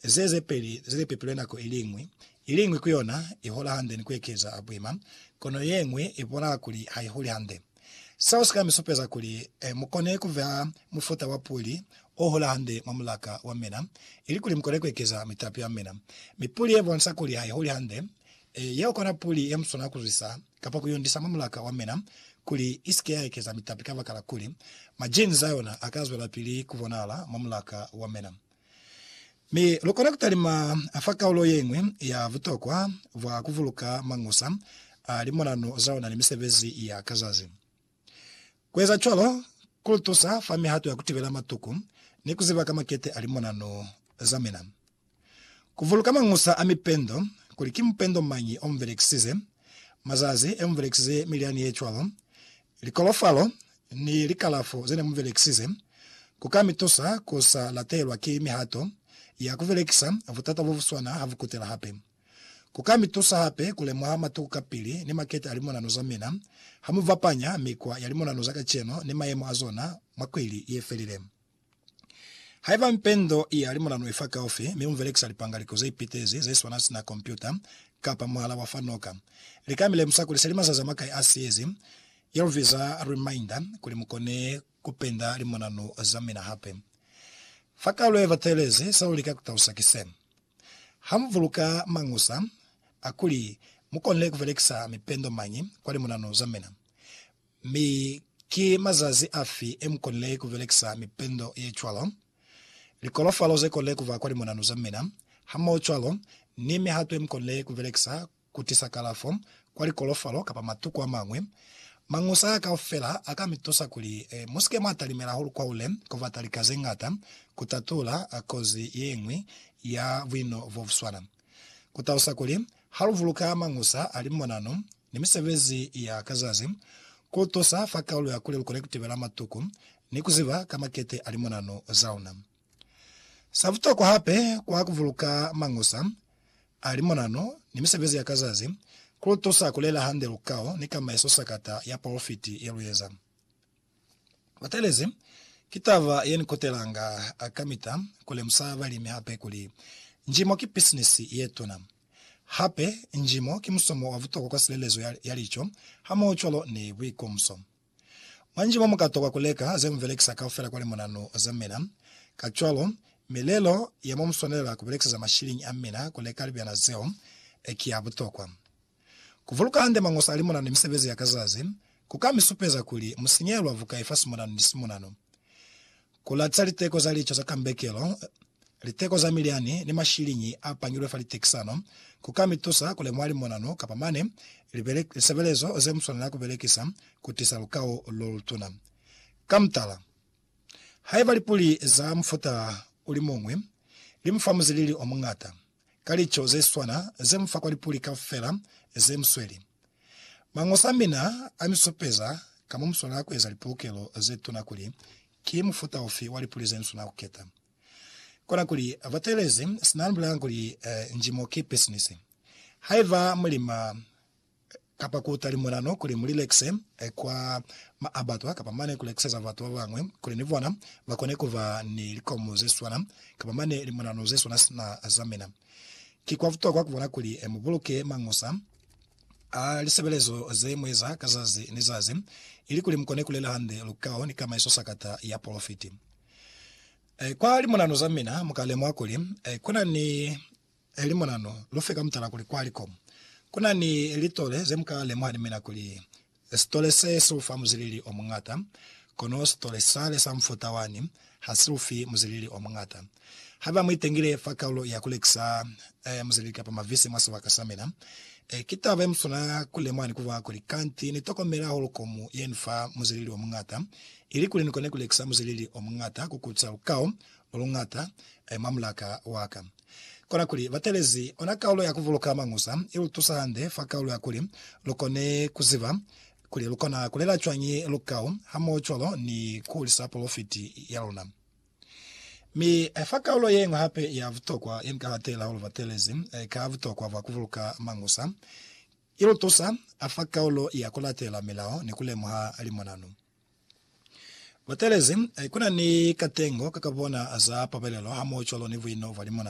ze ze peli ze li pepilwe nako i liñwi, i liñwi ku yona i hola hande ni ku ekeza a buima, kono ye ñwi i bonala kuli ha i huli hande. Seo si ka mi supeza kuli mu kone ku beha mufuta wa puli o hola hande mwa mulaka wa mina, ilikuli mu kone ku ekeza mitapi ya mina. Mi puli ye bonisa kuli ha i huli hande, yeo kona puli ye mu swanela ku zwisa kapa ku yundisa mwa mulaka wa mina kuli i si ke ya ekeza mitapi kabakala kuli majinzi a yona a ka zwelapili ku bonahala mwa mulaka wa mina. Mi lukona kutalima fa kaulo yeñwi ya butokwa bwa kuvuluka mañusa a limonano zaona ni misebezi ya ka zazi. Kueza cwalo kulutusa fa mihato ya kutibela matuku ni kuziba ka makete a limonano zamina. Kuvuluka mañusa a mipendo, kuli ki mupendo mañi omubelekisize, mazazi eomubelekisize milyani yecwalo, likolofalo, ni likalafo ze ne mu belekisize, ku ka mi tusa ku sa latelwa ki mihato ya ku belekisa butata bo bu swana ha bu kutela hape. Ku ka mi tusa hape ku lemuha matuku kapili ni makete a limonano za mina ha mu bapanya mikwa ya limonano za kacenu ni mayemo a zona mwa kwili ye felile. Haiba mpendo ya limulanu ifa kaufi, mi mubelekisa lipangaliko zeipitezi zeswana sina kompyuta kapa muhala wa fa noka, lika milemusa kuli seli mazazi amakai asiezi, ye lubiza reminder, kuli mukone kupenda limulanu zamina hape. Fa kaulo yebatelezi, selulika kutalusa ki se, Hamubuluka mañusa akuli mukonile kubelekisa mipendo mañi kwa limulanu zamina, Mi ki mazazi afi emukonile kubelekisa mipendo yecwalo? Likolofalo zekonile kuba kwa limonanu zamina, hamohocwalo ni mihato yemukonile kubelekisa kutisa kalafo kwa likolofalo kapa matuku amañwi. Mañusa aa kaufela aka mitusa kuli musike mwatalimela hahulu kwahule kubata lika zeñata kutatula kozi yeñwi ya buino bobuswana. Kutalusa kuli, haluvuluka mañusa a limonanu ni misebezi ya ka zazi, ku tusa fa kaulu ya kuli lu kone ku tibela matuku ni ku ziba ka makete a limonano za una. Sa butokwa hape kwa ku buluka Mañusa a Limonano ni misebezi ya ka zazi, ku lu tusa ku lela hande lukao ni kamaiso sakata ya polofiti ye lu eza. Batelezi, ki taba ye ni kutelanga kamita ku lemusa balimi hape kuli, njimo ki pisinisi ye tuna. Hape, njimo ki musomo wa butokwa kwa silelezo ya lico hamohocwalo ni buikomso. Mwa njimo mukatokwa kuleka ze mubelekisa kaufela kwa limonanu za mina. Kacwalo, milelo ya mo muswanelela kubelekiseza mashiliñi a mina kuleka libyana zeo ki ya butokwa. Kubuluka hande mañoso a limonanu ni misebezi ya ka zazi kuka misupeza kuli musinyehela bukai fa simonanu ni simonanu. Ku latiza liteko za lico za kambekelo, liteko za milyani, ni mashiliñi a pangilwe fa litekisano ku ka mi tusa ku lemuha limonano kapa mane lisebelezo ze mu swanela ku belekisa ku tisa lukau lo lutuna. Ka mutala, haiba lipuli za mufuta o li muñwi li mu fa muzilili o muñata, ka lico ze swana ze mu fa kwa lipuli kaufela ze mu sweli. Mañosa a mina a mi supeza ka mo mu swanela ku eza lipulukelo ze tuna kuli ki mufuta ufi wa lipuli ze ni swanela ku keta. Kona kuli, Batelezi, sina ni bulelanga kuli, Njimo ki pisinisi. Haiba mu lima, kapa ku utali mulano kuli mu lilekise kwa maabatwa kapa mane ku lekiseza batu ba bañwi kuli ni bona ba kone ku ba ni likomu ze swana kapa mane limulano ze swana sina za mina. Ki kwa butokwa ku bona kuli mu buluke mañusa a lisebelezo ze mu eza ka zazi ni zazi ilikuli mu kone ku lela hande lukao ni kamaiso sakata ya polofiti. Kwa limulano za mina mu ka lemuha kuli ku na ni Eli mona no lufe ka mutala kuli kwa likomu kuna ni litole ze muka lemuha ni mina kuli sitole se si ufa muzilili o muñata, kono sitole sale sa mufuta wani ha si ufi muzilili o muñata. Haiba mu itengile fa kaulo ya kulekisa muzilili kapa mavisi mwa sibaka sa mina, ki taba ye muswana ku lemuha ni kuba kuli kanti ni tokomela hahulu komu ye ni fa muzilili o muñata, ili kuli ni kone ku lekisa muzilili o muñata ku kuca lukao loluñata mwa mulaka waka. Kona kuli, batalezi ona kaulo ya kuvuluka mañusa ilutusa hande fa kaulo ya kuli lukone kuziba kuli lukona kulela cwañi lukau hamohocwalo ni kuhulisa polofiti yaluna. Mi fa kaulo yeñwi hape ya butokwa yenika hatela hahulu batelezi ka butokwa bwa kuvuluka mañusa, ilutusa fa kaulo ya kulatela milao ni kulemuha limonanu. Batelezi, kuna ni katengo kakabona za pabelelo hamohocwalo ni buino bwa limonanu.